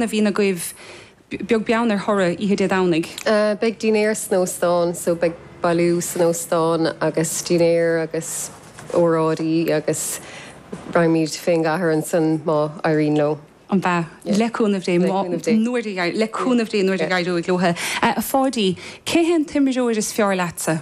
a bhíonn agaibh, beag beann ar thoradh oíche Dé Domhnaigh? Beidh dinnéar san óstán so beidh bailiú san óstán agus dinnéar agus óráidí agus raghaimid fén gcathair ansan má éiríonn leo. ambaist, le cúnamh Dé, má, nuair a, le cúnamh Dé, nuair a éireoidh leo. A Pháidí, cé hé an t-imreoir is fearr leatsa?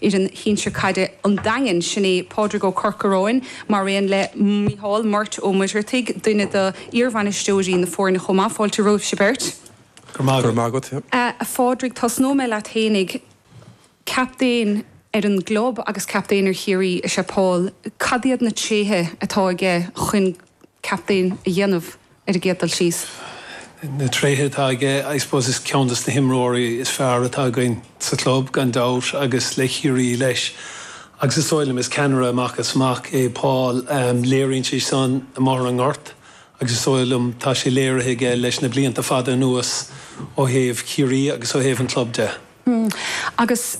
fhoireann shinsir caide an Daingin, sin é Pádraig Ó Corcaráin, mar aon le Micheál Murt Ó Muircheartaigh, duine d'iarbhainisteoirí na foirne chomh maith. Fáilte romhaibhse beirt. Go raibh maith agat. A Phádraig, tosnóidh mé leat fhéinig. Captaen ar an gclub agus captaen ar Chiarraí is ea Paul. Cad iad na tréithe atá aige chun captaen a dhéanamh? ar an gcéad dul síos. Na tréithe atá aige, I suppose is ceann de na himreoirí is fearr atá againn sa chlub, gan dabht, agus le Ciarraí leis. Agus is dóigh liom, is ceannaire amach is amach é Paul. Léiríonn sé san i mbóthar an Ghoirt agus is dóigh liom tá sé léirithe aige leis na blianta fada anuas ó thaobh Chiarraí agus ó thaobh an chlub de. Hm, agus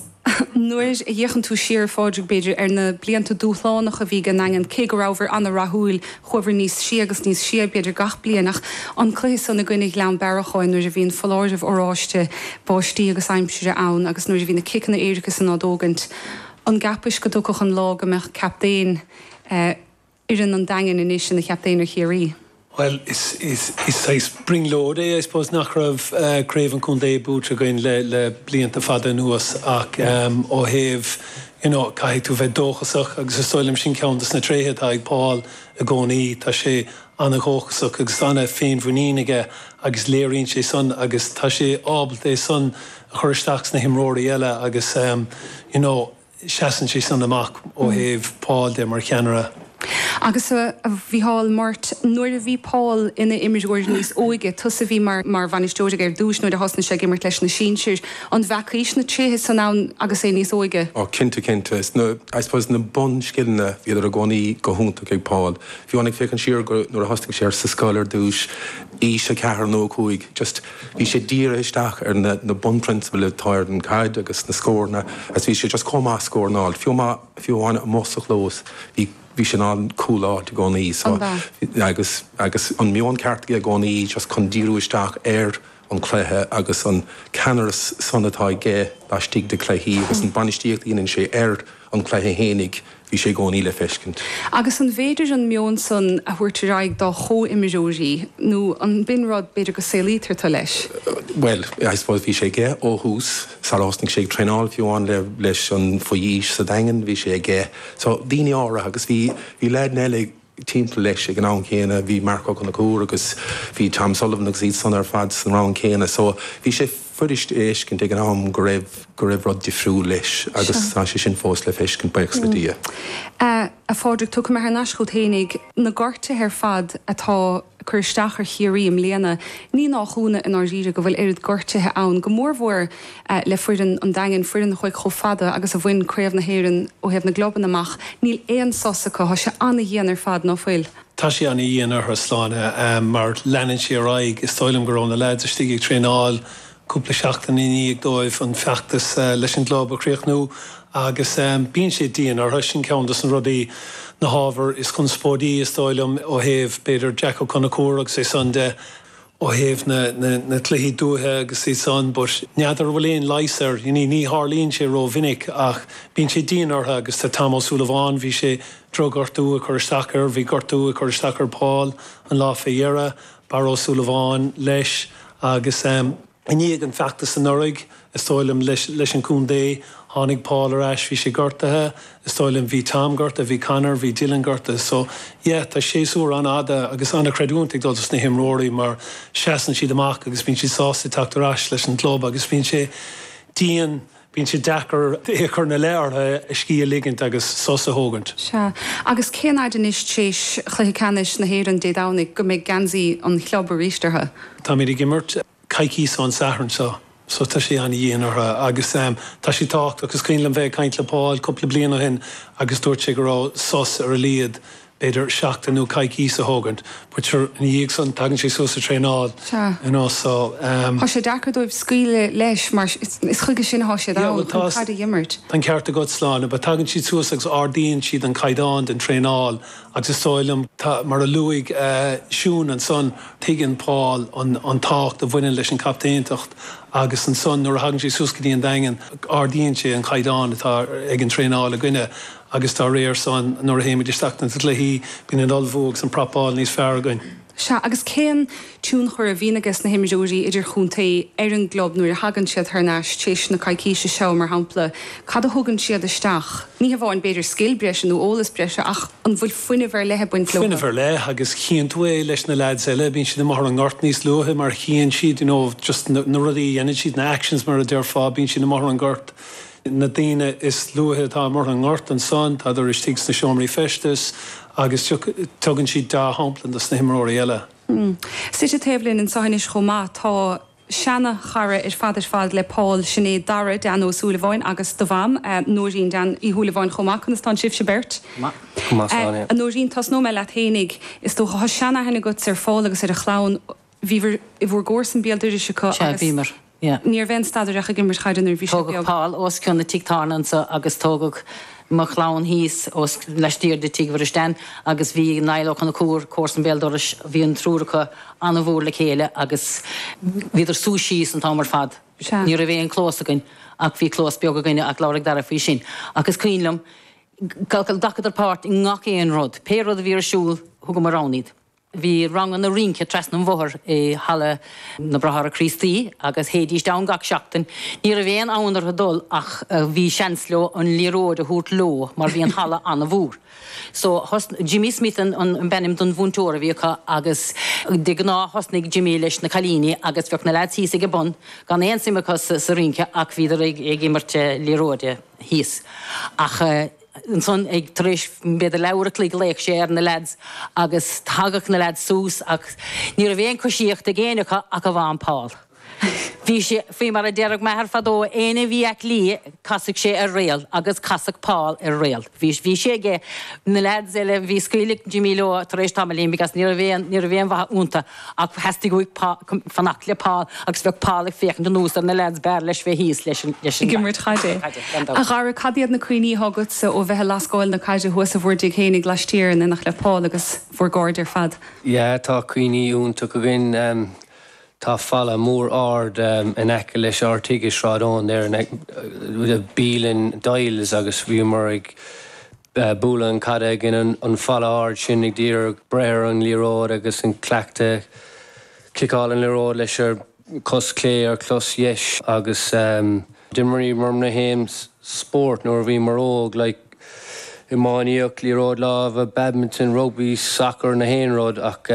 nuair a fhéachann tú siar, a Phádraig, b'fhéidir, ar na blianta dúshlánacha a bhí ag an nDaingean, cé go rabhamar an-rathúil, chuamhar níos sia agus níos sia, b'fhéidir, gach bliain, ach an cluiche san i gcoinne Chlann Bearacháin nuair a bhí an foláireamh oráiste, báistí agus aimsire ann agus nuair a bhí na ciceanna éirice san á dtógaint, an gceapaist go dtiocfadh an lá go mbeadh captaen, eh, fhoireann an Daingin anois ina chaptaen ar Chiarraí. Bhuel, is saghas brionglóid é, I suppose, nach raibh craobh an chontae buaite againn le blianta fada anuas ach ó thaobh, you know, caithfidh tú bheith dóchasach agus is dóigh liom sin ceann de na tréithe atá ag Paul i gcónaí, tá sé ana-dhóchasach agus ana-fhéinmhuinín aige agus léiríonn sé san agus tá sé ábalta é san a chur isteach sna himreoirí eile agus, you know. sheasann sé san amach ó thaobh Paul de mar cheannaire. Agus a Mhícheál Murt, nuair a bhí Paul ina imreoir níos óige, tusa a bhí mar bhainisteoir aige ar dtús nuair a thosnaigh sé ag imirt leis na sinsir, an bhfeacaís na tréithe san ann agus é níos óige? Ó cinnte, cinnte. Is na, I suppose, na bunscileanna, bhíodar i gcónaí go hiontach ag Paul. Bhuel, ag féachaint siar go, nuair a thosnaigh sé sa scoil ar dtús, aois a ceathair nó a cúig, just, Bhí sé dírithe isteach ar na bunphrionsabail atá ar an gcaid agus na scóranna, agus bhí sé just chomh maith ag scóráil, fiú amach, fiú amháin amuigh sa chlós, bhí, bhí sé ag cúláil i gcónaí, so, agus, agus an meon ceart aige i gcónaí just chun díriú isteach ar an chluiche agus an ceannaras san atá aige laistigh de chluichí agus an bainistíocht a dheineann sé ar an gcluiche fhéinig bhí sé i gcónaí le feiscint. Agus an bhféidir an meon san a thabhairt ar aghaidh dá chomhimreoirí nó an b'in rud, b'fhéidir, go saolaítear tú leis? Bhuel, I suppose bhí sé aige ó thús. Sar a thosnaigh sé ag traenáil fiú amháin le, leis an, faoi aois sa Daingean bhí sé aige. So, daoine á ra agus bhí, bhí leaideanna eile ag, timpeall leis ag an am chéanna. Bhí Marc Ó Conchúir agus bhí Tom O'Sullivan agus iad san ar fad san rang céanna so bhí sé fuirist a fheiscint ag an am go raibh go raibh rud difriúil leis agus Sure. tá sé sin fós le feiscint, buíochas le Dia. A Phádraig, tiocfam thar n-ais chugat fhéinig. Na gortuithe ar fad atá. cur isteach ar Chiarraí i mbliana, ní nách ionadh, i ndáiríre, go bhfuil oiread gortuithe ann, go mórmhór le foireann an Daingin, foireann a chuaigh chomh fada agus a bhain Craobh na hÉireann ó thaobh na gclubanna amach, níl aon sos acu. Tá sé ana-dhian ar fad, ná fuil? Tá sé ana-dhian orthu, Sláine, mar leanann sé ar aghaidh, Is dóigh liom go raibh na leaids istigh ag traenáil cúpla seachtain i ndiaidh dóibh an feachtas leis an gclub a chríochnú agus bíonn sé dian orthu, sin ceann de na rudaí, na hábhair is conspóidí is dóigh liom ó thaobh, b'fhéidir, Jack Ó Conchúir agus é san de, ó thaobh na cluichí dúiche agus iad san, but n'fheadar an bhfuil aon leigheas air, ní tharlaíonn sé rómhinic ach bíonn sé dian orthu agus tá Tom Ó Súilleabháin, bhí sé, drochghortú ag cur isteach air, bhí gortú ag cur isteach ar Paul an lá fé dheireadh Barra Ó Súilleabháin leis agus. I ndiaidh an feachtas anuraidh, is dóigh liom, leis an contae, tháinig Paul ar ais, bhí sé gortaithe, is dóigh liom, bhí Tom gortaithe, bhí Conor, bhí Dylan gortaithe. So, yeah, tá séasúr ana-fhada agus ana-chreidiúint ag dul dos na himreoirí mar seasann siad amach agus bíonn siad sásta teacht ar ais leis an gclub agus bíonn sé dian Bíonn sé deacair é a chur ina leith orthu scíth a ligint agus sos a thógaint. Sea, agus cén fhaid anois tar éis chluiche ceannais na hÉireann Dé Domhnaigh go mbeidh geansaí an chlub arís orthu? Táimid ag imirt coicíos ón Satharn seo so tá sé an-dhian orthu agus tá sé tábhachtach. Is cuimhin liom bheith ag caint le Paul cúpla bliain ó shin agus dúirt sé go raibh sos ar a laghad b'fhéidir seachtain nó coicís a thógaint, but sure ina dhiaidh san tagann sé suas sa traenáil you know so. Thá sé deacair dóibh scaoileadh leis mar is chuige sin athá siad ann, chun caid a dh'imirt. Tá an ceart agat, Sláine, but tagann siad suas agus ardaíonn siad an caighdeán den traenáil agus is dóigh liom, mar a luaigh Siún ansan, tuigeann Paul an tábhacht a bhaineann leis an gcaptaenacht agus ansan nuair a thagann sé suas go dtí an Daingean ardaíonn sé an caighdeán atá ag an traenáil againne. agus dá réir sin, nuair a théimid isteach ins na cluichí, bíonn an t-ullmhú agus an prapáil níos fearr againn. Sea, agus cén tionchar a bhíonn aige sna himreoirí idirchontae ar an gclub nuair a thagann siad thar n-ais, téis na coicíse seo, mar shampla, cad a thugann siad isteach, ní hamháin b'fhéidir scil breise nó eolas breise, ach an bhfuil fuinneamh ar leith ag baint leo? Fuinneamh ar leith, agus chíonn tú é leis na leaids eile, bíonn siad amuigh ar an ngort níos luaithe mar chíonn siad, you know, just na rudaí a dheineann siad, na actions mar a déarfá, bíonn siad amuigh ar an ngort na daoine is luaithe atá amuigh ar an ngort, ansan tádar istigh sna seomraí feistis agus tugann siad deá-shampla dos na himreoirí eile. Suite taobh linn anseo anois chomh maith tá seana-chara ar fad ar fad le Paul, sin é Dara Dan Ó Súilleabháin agus do mham, Nóirín Dan Uí Shúilleabháin chomh maith. Conas tánn sibhse beirt? Go maith, Áine. A Nóirín, tosnóidh mé leat fhéinig. Is dócha tá sean-aithne agat ar Phaul agus ar a chlann. Bhíobhair i bhur gcomharsan béal doiris acu agus. Sea, bhíomar. Yeah. Ní raibh aon stad air ach ag imirt chaide nuair a bhí sé beag. Tógadh Paul os cionn an tigh tábhairne anseo agus tógadh mo chlann thíos os laistiar de tigh Mhuiris Dan agus bhí Niall Ó Conchúir, comharsan béal dorais, bhí an triúr acu an-mhór le chéile agus bhíodar suas síos an t-am ar fad. Sea. Ní raibh aon clós againn ach bhí clós beag againne ach labhróidh Dara faoi sin ach is cuimhin liom, ghlacadar páirt i ngach aon rud. Pé rud a bhí ar siúl, thugamar ann iad. Bhí ranganna rince trasna an bhóthair i Halla na Bráithre Críostaí agus théidís ann gach seachtain. Ní raibh aon fhonn orthu dul ach bhí seans leo an liathróid a thabhairt leo mar bhí an halla an-mhór. So thosn, Jimmy Smith ab ainm don mhúinteoir a bhí acu agus de ghnáth thosnaigh Jimmy leis na cailíní agus bheadh na lads thíos ag an bun gan aon suim acu sa rince ach bhíodar ag imirt liathróide thíos. Ach. ansan ag, tar éis b'fhéidir leathuair an chloig ghlaodh sé ar na leaids agus thagadh na leaids suas ach ní raibh aon coisíocht ag éinne acu ach amháin Paul. Bhí sé, faoi mar a déarfadh m'athair fadó, éinne a bhí aclaí casadh sé ar réal agus casadh Paul ar réal. Bhí, bhí sé aige, na leaids eile, bhí, scaoileadh Jimmy leo tar éis tamaillín because ní raibh aon, ní raibh aon mhaith iontu. Ach theastaigh uaidh fanacht le Paul agus bheadh Paul ag féachaint anuas ar na leaids, b'fhearr leis bheith thíos leis ag imirt chaide. A Dhara, cad iad na cuimhní atá agatsa ó bheith a' lascáil na caide thuas i bhur dtig fhéinig laistiar in éineacht le Paul agus bhur gcairde ar fad? Yeah, tá cuimhní iontacha againn. Tá falla mór ard in aice leis ár dtig i Sráid Eoin ar a bhfuil bialann Doyle's agus bhíomar ag bualadh an caid i gcoinne an falla ard sin ag d'iarraidh breith ar an liathróid agus an cleachtadh ciceáil an liathróid leis ar chos chlé ar chos dheis agus d'imríomar na haon spórt nuair a bhíomar óg, like, iománaíocht, liathróid láimhe, badminton, rugbaí, soccer, na haon rud ach.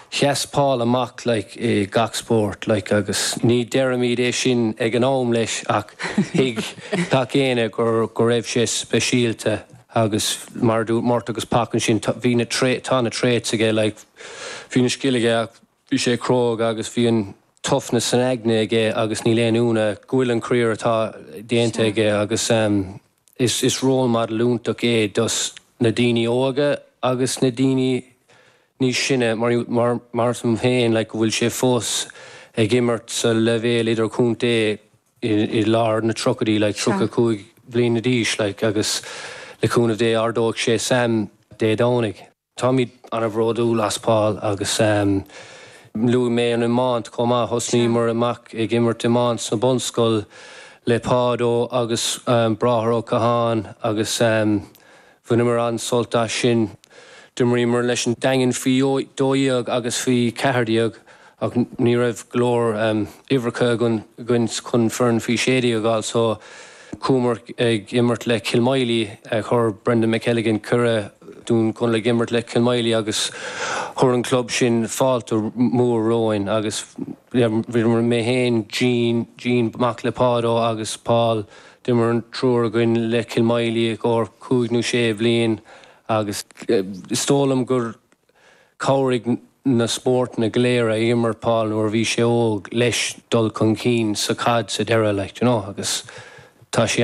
Sheas Paul amach like i gach spórt like agus ní deirimid é sin ag an am leis ach thuig gach éinne gur, go raibh sé speisialta agus mar a dúirt Murt agus Pac ansin tá, bhí na traits, tá na traits aige like bhí an scil aige ach bhí sé cróga agus bhí an toughness san aigne aige agus níl aon ionadh go bhfuil an career atá déanta Sure. aige agus ehm is, is role model iontach é dos na daoine óga agus na daoine níos sine, mar tá mé féin, like, go bhfuil sé fós ag imirt sa leibhéal idirchontae, i lár na tríochaidí, like, tríocha cúig bliana d'aois, like, agus le cúnamh Dé ardóidh sé Sam Dé Domhnaigh. Táimid an-bhródúil as Paul agus luaigh mé an iomáint chomh maith. Thosnaíomar amach ag imirt iomáint sa bhunscoil le Páid Ó agus Bráthair Ó Catháin agus. Bhaineamar an-sult as sin. D'imríomar leis an Daingean faoi dhó dhéag agus faoi cheathair déag ach ní raibh go leor uimhreacha againn chun foireann faoi sé déag a fháil so chuamar ag imirt le Cill Moilí. Chuir Brendan McElligin cuireadh dúinn dhul ag imirt le Cill Moilí agus chuir an club sin fáilte mhór romhainn agus bhíomar, mé féin, Gene, Dean, mac le Páid Ó agus Paul, D'imir an triúr againn le Cill Moilí i gcomhair cúig nó sé bhliain agus is dóigh liom gur chabhraigh na spórtanna go léir a imir Paul nuair a bhí sé óg leis dul chun cinn sa chaid sa deireadh, like, do you know, agus tá sé.